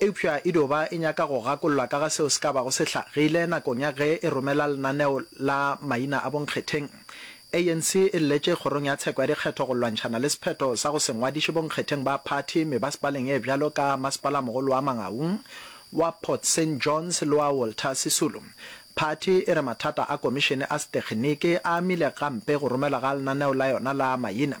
Eupša e dio ba e nyaka go gakollwa ka ga seo se ka bago se hlagile nakong ya ge e romela lenaneo la maina a bonkgetheng. ANC e lletše kgorong ya tsheko ya dikgetho go lwantšhana le sephetho sa go se ngwadiše bonkgetheng ba phathi mebasepaleng e bjalo ka masepalamogolo wa Mangaung, wa Port Saint Johns le wa Walter Sisulu. Phathi e re mathata a komišene a setekgeniki a amile gampe go romelwa ga lenaneo la yona la maina.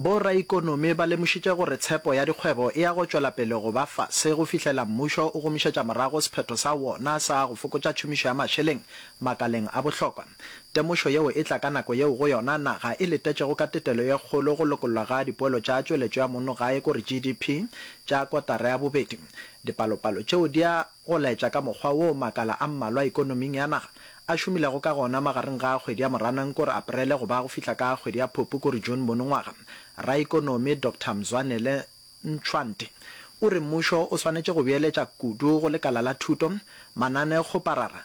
Bo raikonomi ba lemošitše gore tshepo ya dikgwebo e ya go tšwela pele go ba fase go fihlela mmušo o gomišetša morago sephetho sa wona sa go fokotša tšhomišo ya mašeleng makaleng a bohlokwa. Temošo yeo e tla ka nako yeo go yona naga e letetšego ka tetelo ye kgolo go lokollwa ga dipoelo tša tšweletšo ya mono gae kore GDP tša kotara ya bobedi. Dipalopalo tšeo di a go laetša ka mokgwa woo makala a mmalwa ekonoming ya naga a šomilego ka gona magareng ga kgwedi ya Moranang kore Aparele go ba go fihla ka kgwedi ya Phupu kore June monongwaga. Raekonomi Doctor Mzwanele Ntshwante o re mmušo o swanetše go beeletša kudu go lekala la thuto, manane-kgoparara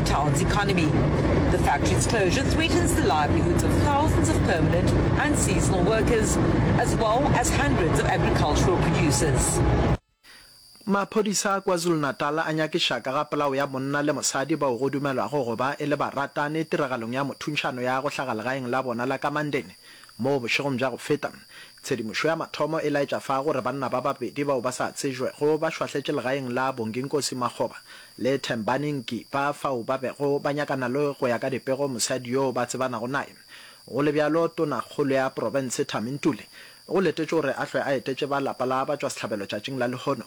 Town's economy. The factory's closure threatens the livelihoods of thousands of permanent and seasonal workers, as well as hundreds of agricultural producers. Maphodisa a KwaZulu-Natal a nyakiša ka ga polao ya monna le mosadi bao go dumelwago go ba e le baratani tiragalong ya mothuntšhano ya go hlaga legaeng la bona la Kamanden mo bošegong bja go feta. Tshedimošo ya mathomo e laetša fa gore banna ba babedi bao ba sa tsejwego ba šwahletše legaeng la Bonginkosi Makgoba Le Thembanenki ba fao ba bego ba nyakana le go ya ka dipego mosadi yo ba tsebanago naye. Go le bjalo, Tonakgolo ya Profense Thami Ntuli o letetšwe gore a hlwe a etetše ba lapa la batšwasehlabelo tšatšing la lehono.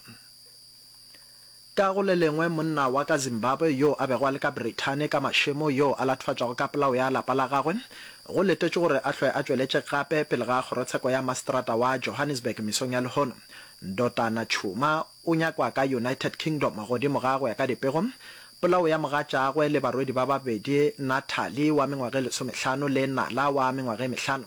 Ka go le lengwe, monna wa ka Zimbabwe yo a bego a le ka Brithani ka mašemo yo a latofatšwago ka polao ya lapa la gagwe, go letetšwe gore a hlwe a tšweletše gape pele ga Kgorotsheko ya Maseterata wa Johannesburg mesong ya lehono. Ndotana Tshuma O nyakwa ka United Kingdom godimo ga go ya ka dipego. Polao ya mogatšaagwe le barwedi ba babedi, Natalie wa mengwaga e lesomehlano le Nala wa mengwaga e mehlano,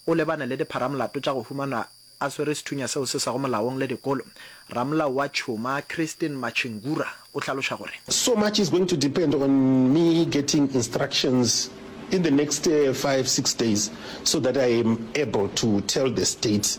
o lebane le dipharamolato tša go humanwa a swere sethunya seo se sego molaong le dikolo. Ramolao wa tšhuma, Christine Machingura, o hlaloša gore. So much is going to depend on me getting instructions in the next five, six days so that I am able to tell the state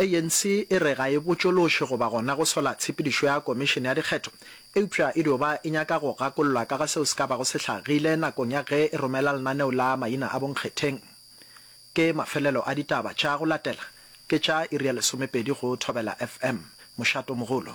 ANC e re ga e botšološe goba gona go sola tshepedišo ya Komišene ya Dikgetho, eupša e dio ba e nyaka go gakollwa ka ga seo se ka bago se hlagile nakong ya ge e romela lenaneo la maina a bonkgetheng. Ke mafelelo a ditaba tša go latela ke tša iri ya lesomepedi go Thobela FM. Mošato mogolo.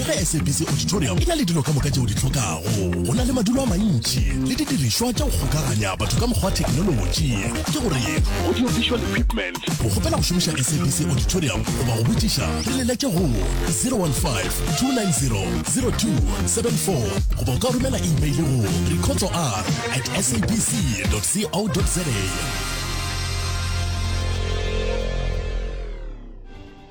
ge sabc auditorium e na le dilo ka moka tšeo di hlokago go na le madulo a mantši le didirišwa tša go kgokaganya batho ka mokgwa wa thekenolotši ke gore audio visual equipment go kgopela go šomiša sabc auditorium goba go botšiša re leletse go 015-290-0274 goba o ka romela email go recotso r at sabc co za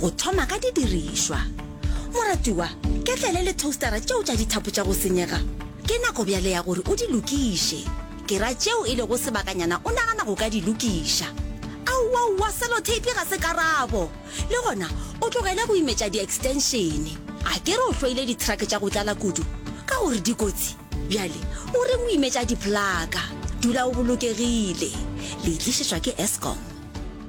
go thoma ka didirišwa moratiwa ketlele le toastera tšeo tša dithapo tša go senyega ke nako bjale ya gore o di lokiše ke ra tšeo e lego sebakanyana o nagana go ka di lokiša aowaowa selotape ga se karabo le gona o tlogele go imetša di-extensione a ke re o hloile dithrake tša go tlala kudu ka gore dikotsi bjale o reng o imetša diplaka dula o bolokegile le itlišetšwa ke escom